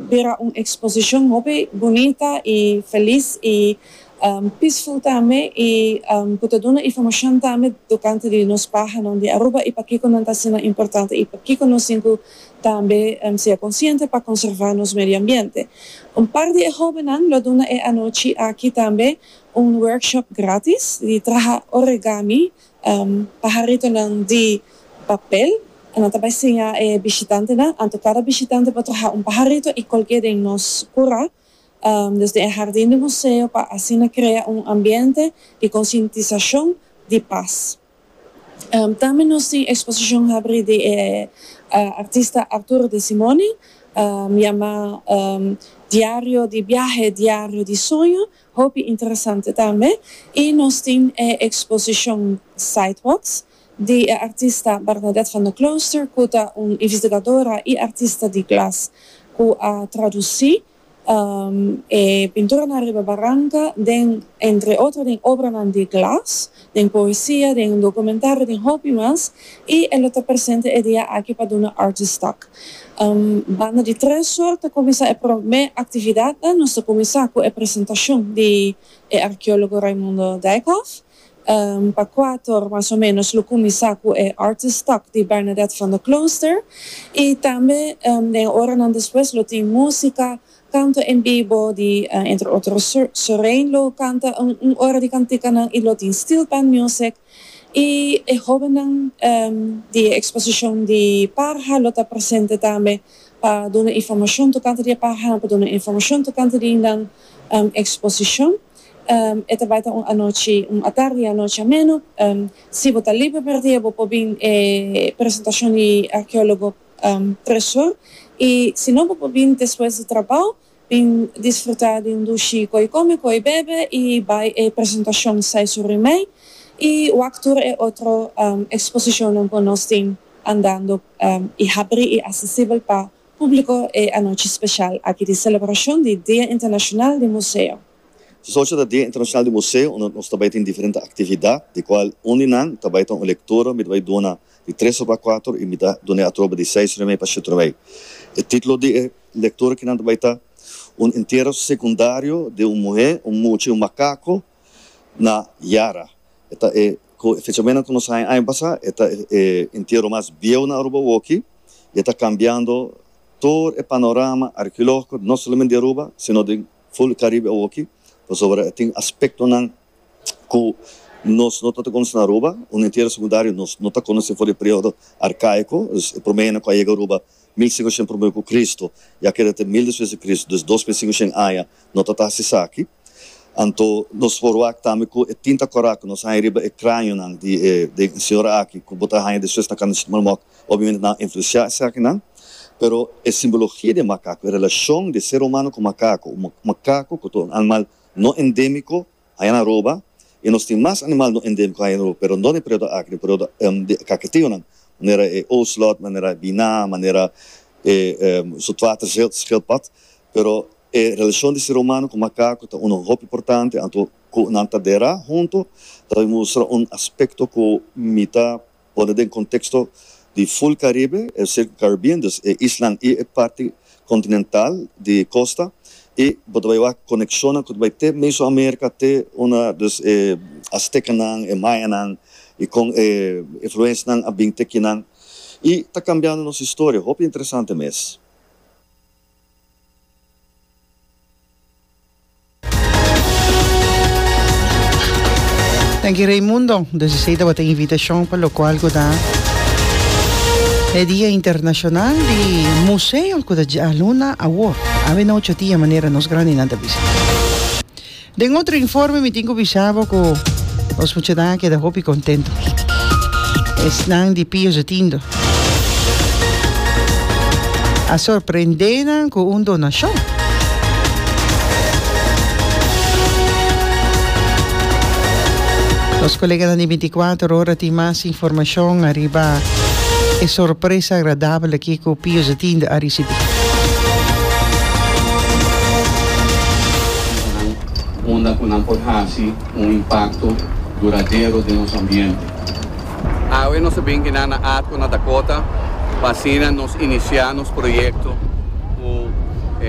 Bira un exposicion hopi bunita y feliz y peaceful tambe y cu ta duna informacion tambe tocante di nos pahanan di Aruba y pakico nan ta asina importante y pakico nos tin cu tambe sea consciente pa conserva nos medio ambiente. Un par di e hobennan lo duna e anochi aki tambe un workshop gratis di traha origami Paharitonan di papel. Nan ta bai siña e bishitantenan anto kada bishitante por traha un paharito i kolke den nos kura desde e hardin di museo pa asina krea un ambiente di konsientisashon di pas. Tambe nos tin eksposishon habri di e artista Arturo de Simone yamá Diario di biahe, Diario di soño Hopi interesante tambe y nos tin e exposicion Sidewalks di e artista Bernadette van der Klooster cu ta un investigadora y artista di glas cu a traduci e pinturanan riba baranca den entre otro den obranan di glas den poesia, den un documentaro, den hopi mas, y e lo ta presente e dia aki pa duna artistak. Banda di tres or ta cuminsa e prome actividadnan, nos ta cuminsa cu e presentacion di e archeologo Raimundo Dijkhof, pa cuator mas o menos lo cuminsa cu e artistak di Bernadette van der Klooster, y tambe den e oranan despues lo tin musica, Kanto en bibo di entre otro Sorein lo kanta un ora di kantikanan y lo tin steel pan music y e hobennan di e exposicion di parha lo ta presente tambe pa duna informacion tocante di e parhanan, pa duna informacion tocante di nan exposicion. E ta bai ta un anochi, un atardi y anochi ameno. Si bo ta liber mierdia bo por bin e presentacion di archeologo. presion y si no bo por bini despues di trabao bin disfruta di un dushi cu ey come cu ey bebe y bay e presentacion sai su rimey y wak tur e otro exposicionnan cu nos tin andando y habri y accesibel pa publico e anochi special aki di celebracion di Dia Internacional di Museo. Su sochi ta Dia Internashonal di Museo unda nos ta bai tin diferente aktividat di kual un di nan ta bai ta un lektura mi ta bai duna di tres oba kuater y mi ta dun'e atrobe di seis orimei pa shiete orimei. E titulo di e lektura ki nan ta bai ta Un Entierro Secundario de un Muhé, un Mucha y un Makako na Yara. E ta e ku e fechamen ku nos haña aña pasá e ta e entierro mas bieu na Aruba woki y e ta kambiando tur e panorama arkeológiko no solamente di Aruba sino den Full Caribe awoki pasobra e tin aspectonan cu nos no ta ta conoce na Aruba, un entierro secundario nos no ta conoce for di e periodo arcaico, dus e prome hende cu a yega Aruba mil cinco shen prome cu Cristo y a keda te mil despues di Cristo, dus dos mil cinco shen aña no ta ta haci esaki. Anto nos forwak tambe cu e tin ta corac, nos haña riba e cranionan di e señora aki cu bo ta haña despues na Cana Chicmalmot. Obviamente nan a influenciá esaki akinan, pero e simbologia di e makako, e relacion di e ser humano cu makako, un makako cu ta un animal no endemico, haña nan roba, y nos tin mas animal no endemico haña nan roba, pero dor di e periodo aki, di periodo di kaketiunan, manera e ocelot, manera e biná, manera e zoetwaterschildpad, pero e relacion di ser humano cu makako ta uno hopi importante, anto cu nan ta dera hunto, ta mustra un aspecto cu mi ta Pone den konteksto di ful Karibe, e Circum Caribbean, dus e islan i e parti kontinental di kosta, i bo ta bai wak konekshonnan ku ta bai te Meso Amerika, te una, dus e Astekanan, e Mayanan i kon e influensnan a bin te kinan i ta kambiando nos historia. Hopi interesante mes. Tenki Raimundo desisei tabata e invitashon pa lokual ku ta e Dia Internashonal di Museo ku ta djaluna awor. Awe na ocho dia manera nos grandinan ta bisita. Den otro informe mi tin cu bisa bo cu nos muchanan a keda hopi contento. Esnan di Pio Zotindo a sorprende nan cu un donacion. Nos coleganan di binticuater ora tin mas informacion ariba e sorpresa agradabel aki cu Pio Zotindo a ricibi. Esnan unda cu nan por haci un impacto duradero den nos ambiente. Awe nos a bin kina na Arco na Dakota pa asina nos inicia nos proyecto cu e.